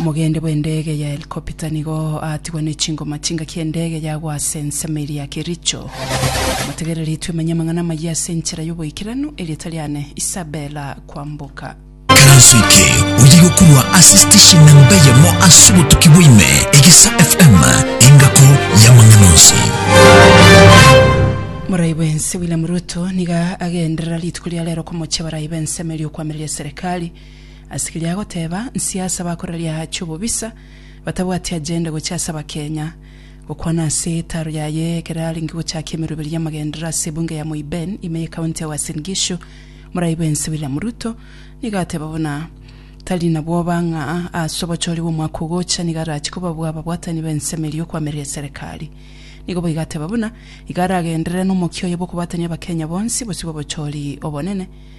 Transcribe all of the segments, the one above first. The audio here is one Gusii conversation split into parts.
Omogende bw'endege ya helikopita nigo aatigwa ne chingoma ch'engaki y'endege yagwa ase ensemo eria ya Kericho. Motegereri twemenye amang'ana amayia ase enchera y'oboikeranu, erieta riane Isabella Kwamboka. Eranso eke oye gokorwa ase station namba eyemo ase obotuki bwa ime, Egesa FM, engako y'amang'ana onsi. Morai bwense William Ruto niga agenderera rituko ria rero komochia barai b'ensemo eria okwamireria serikali. Asekeria agoteba nsi ase abakoraria aache obobisa batabwati agenda gocha ase abakenya. Gokwana ase etaro yaye ekero arenge gochaka emeroberi y'amagenderero ase ebunge ya Moi Ben ime y'ekaunti ya Uasin Gishu, morai bwensi William Ruto nigo ateba buna tari na bwoba ng'a ase obochori bw'omwaka ogocha nigo arache kobabua ababwatani b'ensemo eria y'okoamereria eserekari. Nigo boigo ateba buna iga aragenderere nomokia oye bw'okobwatania abakenya bonsi bosio b'obochori obonene.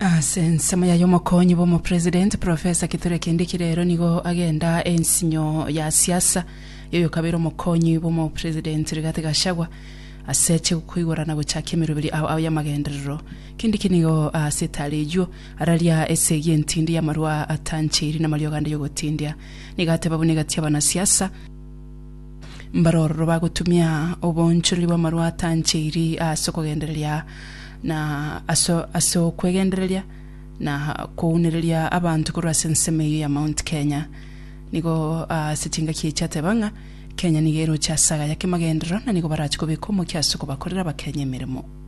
Ase ensemo yaye omokonyi bw'omopresident, Professor Kithure Kindiki rero nigo agenda ensinyo ya siasa y'oyokabeire omokonyi bw'omopresident Rigathi Gachagua ase chi koigora na gochakia emeroberi ao ao y'amagenderero. Kindiki nigo ase etara eyio araria esegi entindi y'amarwa atancheiri n'amariogo ande y'ogotindia. Nigo ateba buna egati y'abanasiasa Mbaro ororo bagotumia oboonchorori bw'amarwa atancheiri ase okogendereria na ase ase okwegendereria na kounereria abanto korwa ase ensemo eyio ya Mount Kenya. Nigo ase chingaki echi ateba ng'a Kenya nigo eroche ase agaya k'emagenderero na nigo barache kobeka omokia ase okobakorera Abakenya emeremo.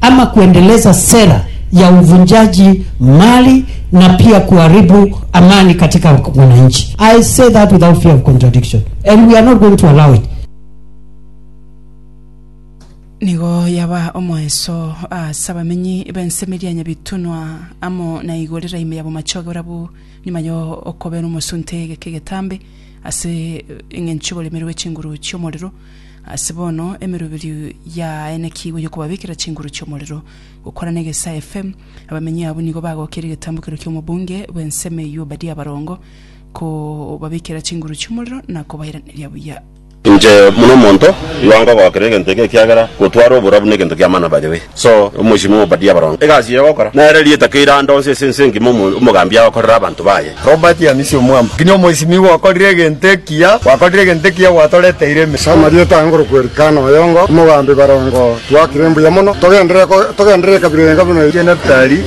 ama kuendeleza sera ya uvunjaji mali na pia kuharibu amani katika wananchi. I say that without fear of contradiction and we are not going to allow it. Nigo yaba omoenso ase abamenyi b'ensemeria ya Nyabitunwa amo na Igorera ime ya Bomachoge barabwo nyuma yo okobera omosunte egeke egetambe ase eng'encho y'oboremerwe bwe chinguru chi'omorero Ase bono emeroberio yaenekigwe y'okobabekera chinguru chi'omorero. Gokwana na egesae FM, abamenyi abwo nigo bagokirie egetambokero ki'omobunge bw'ensemo eyio Obadia Abarongo, kobabekera chinguru chi'omorero na kobairaneria buya. Inche buna omonto, igo nkogokera egento eke, ekiagera gotwara oborabu negento ki'amana bayoe. So, omochie momobadie abaronge egasi eye ogokora, nere erieta keire ande onsi ase ense engima omo- omogambi agokorere abanto baye. Robert Yamisi Omwamba, Nkinya omoisimigwa okorire egento ekiya, gwakorire egento ekiya gwatoreteire ime. Ase amarieta aa ngorokwa Elikana oyongo, omogambi barongo, twakire mbuya mono, togenderere ko togenderere ekabira eye enga buna eye. Neftali.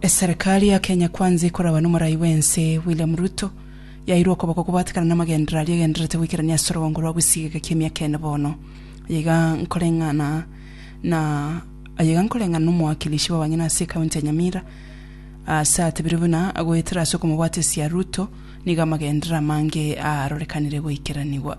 Eserekari ya Kenya Kwanza ekoragwa n'omorai bw'ense William Ruto, yairwe okoboko kobwatekana namagenderero aria egendererete goikerania ase orogongo rwa Gusii egeka ki'emiaka ene bono. Aye iga nkoreng'ana na aye iga nkoreng'ana n'omowakilishi bw'abanyene ase ekaunti ya Nyamira ase atebirie buna agoetera ase okomobwatesia Ruto nigo amagenderero amange aarorekanire goikeranigwa.